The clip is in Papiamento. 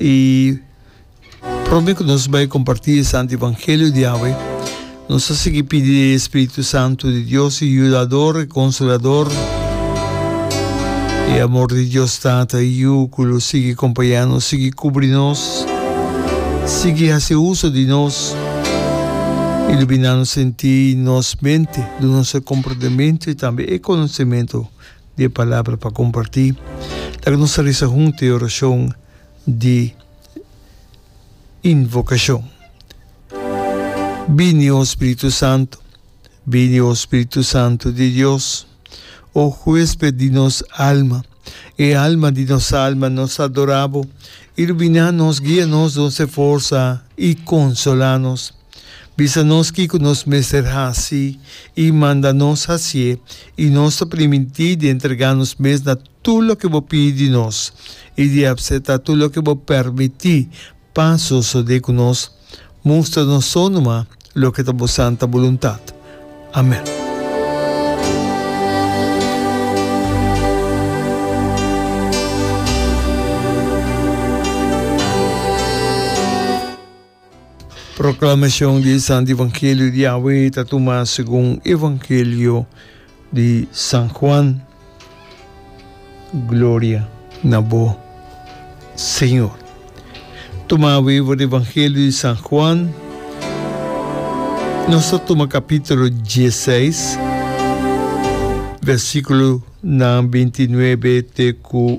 I prome ku nos bai kompartí e santu evangelio di awe, nos ta sigui pidi di e spiritu santu di Dios, e yudador, e konsolador. E amor di Dios Tata i Yu ku lo sigui kompañá nos, sigui kubri nos, sigui hasi uso di nos, iluminá nos sentí i nos mente, duna nos e komprendementu i tambe e konosementu. di e palabra pa comparti. Laga nos a risa hunto e oracion di invocacion. Bini, o Spiritu Santo. Bini, o Spiritu Santo di Dios. O huesped di nos alma, e alma di nos alma, nos adora bo. Ilumina nos, guia nos, don se forsa y consola nos. Bisa nos kiko nos mester hasi i manda nos hasié, i nos ta primintí di entregá nos mes na tur loke bo pidi di nos i di apseptá tur loke bo permití pa sosodé ku nos. Mustra nos so numa loke ta bo santa buluntat. Amèn. Proclamacion di e Santo Evangelio di Yahwe ta tuma segun Evangelio di San Juan. Gloria na bo, Señor. Tuma awe for di Evangelio di San Juan. Nos ta tuma capítulo 16, versículo na 29 te cu